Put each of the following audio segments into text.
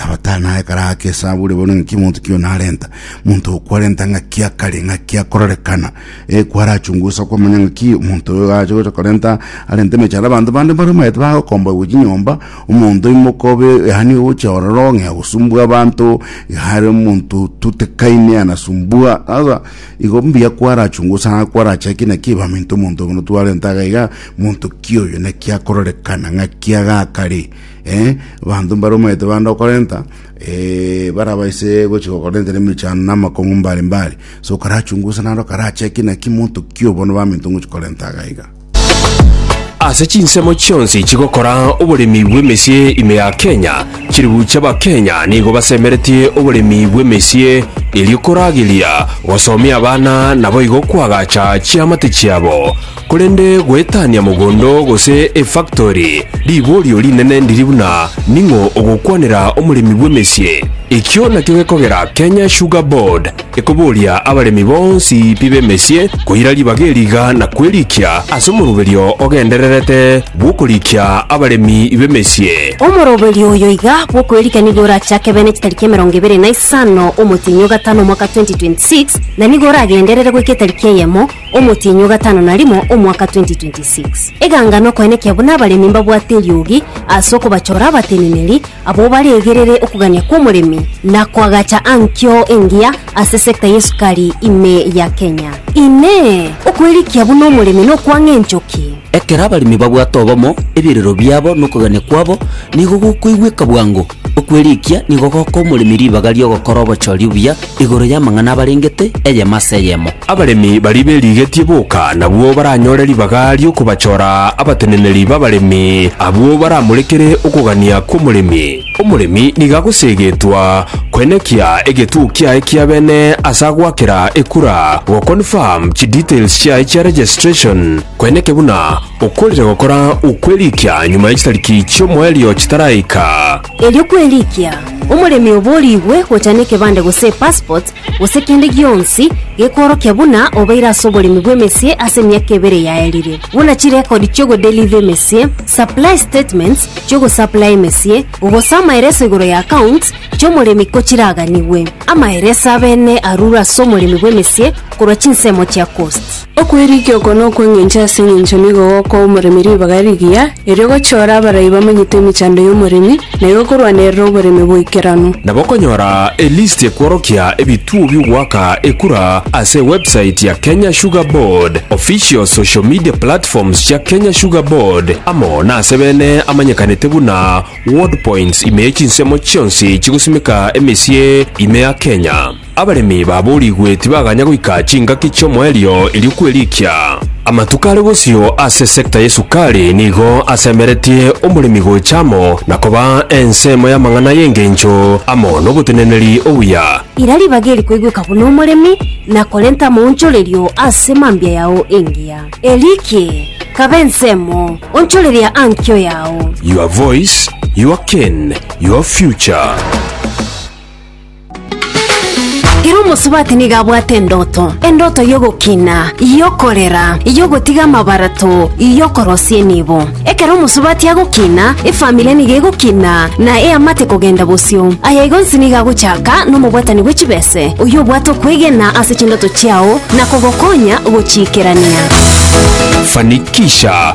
Nabatano ekara ake esaburi bono ng'aki monto kio narenta monto okwarenta ng'aki akare ng'aki akorerekana ekwarachungusa kwamanya ng'aki monto oyo ache gocha korenta arente emechara abanto bande mbare maete bagokomba gochi nyomba omonto imokobe yani oche ororo ng'ea gosumbua abanto hare omonto tutekaine anasumbua sasa igo mbuya kwarachungusa kwarachaki naki baminto monto bono twarenta iga monto kio oyo naki akororekana ng'aki agakare Eh, abanto mbaromete bande okorenta eh, barabaise gochia gokorenta nemichano na amakong'u mbare mbare so okarachungusa naro karacheki naki monto ki obono baminto ngochi korenta agaiga Ase chinsemo chionsi chigokora oboremi bw'emesie ime ya Kenya, chiribu chi'Abakenya nigo basemeretie oboremi bw'emesie erio korageria gosomia abana naboigo koagacha chiamate chiabo. Korende goetania mogondo gose efaktori, riborio rinene ndiri buna ning'o ogokwanera omoremi bw'emesie. Ekio nakio gekogera Kenya Sugar Board ekoboria abaremi bonsi pi b'emesie koira ribaga eri iga na kwerikia ase omoroberio ogendererete bw'okorikia abaremi b'emesie. Omoroberio oyo iga bw'okwerikia nigo orachake bene chitariki emerongo ebere na isano omotienyi o gatano omwaka 2026, na nigo oragenderere goika etariki eyemo, Omotienyi o gatano na rimo omwaka 2026. Eganga nokoenekia buna abaremi mbabwate eriogi ase okobachora abateneneri abwo baregerere okogania kw'omoremi na koagacha ankio engiya ase sector y'esukari ime ya Kenya. Inee! Okwerikia buna omoremi nokwang'a enchoki? Ekero abaremi babwate obomo, ebirero biabo nokogania kwabo nigo gokoigweka bwango. Okwerikia nigo goka omoremi ribaga ri'ogokora obochori obuya igoro y'amang'ana abarengete, eyemo ase eyemo. Abaremi baria berigetie boka nabwo baranyore ribaga ri'okobachora abateneneri b'abaremi, abwo baramorekere okogania kw'omoremi. Omoremi nigo agoseegetwa koenekia egetuo kiaye kia bene ase agoakera ekura, goconfirm chidetails chiaye chia registration, koeneke buna Okorire gokora okw'erikia nyuma ya chitariki chi'omoerio chitaraika. Erio kw'erikia, omoremi oborigwe gocha nekebande gose epassport gose kende gionsi gekoorokia buna obeire ase oboremi bw'emesie ase emiaka ebere yaerire, buna chirekodi chi'ogodeliver emesie, supply statements chi'ogosaplaya emesie, gose amaereso igoro ya accounts chi'omoremi ko chiraganigwe. Amaereso abene arure ase omoremi bw'emesie korwa chinsemo chia costs. Okwerigia oko nokw'engencho ase engencho nigo gokoa omoremi ribaga rigiya, erio gochiora abarai bamanyete emechando y'omoremi, na igo korwanerera oboremi boikeranu. Nabo okonyora elisti ekworokia ebituo bi'ogoaka ekura ase ewebsite ya Kenya Sugar Board, official social media platforms chia Kenya Sugar Board, amo nase bene amanyekanete buna Ward Points ime chinsemo chionsi chigosimeka emesie ime ya Kenya. Abaremi baboorigwe tibaganya goika chingaki chi'omoerio erio kwerikia. Amatuko are bosio ase esecta y'esukari nigo asemeretie omoremi gocha amo na koba ensemo y'amang'ana y'engencho amo n'oboteneneri obuya. Ira ribaga eri koigweka buna omoremi na korenta amaonchorerio ase mambia yao engiya. Erikie, kaba ensemo, onchoreria ankio yao. Your voice, your cane, your future. Ere omosubati nigo abwate endoto, endoto y'ogokina, y'okorera, y'ogotiga amabarato, y'okorosia enibo. Ekero omosubati agokina, efamiri nigo egokina, na eamate kogenda bosio. Aya igo onsi nigo agochaka nomobwatani bwe chibese, oyio obwate okwegena ase chindoto chiao na kogokonya gochiikerania. Fanikisha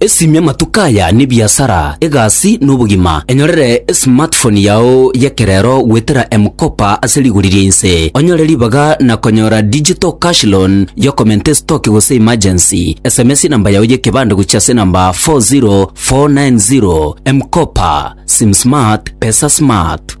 Esimia amatuko aya n'ebiasara, egasi, na obogima. Enyorere esmartphone yao y'ekerero goetera M-Kopa ase rigori ria inse. Onyore ribaga na konyora digital cash loan y'okomenta estoki gose emergency. Sms enamba yao y'ekebande gochia ase enamba 40490. M-Kopa, Sim Smart, Pesa Smart.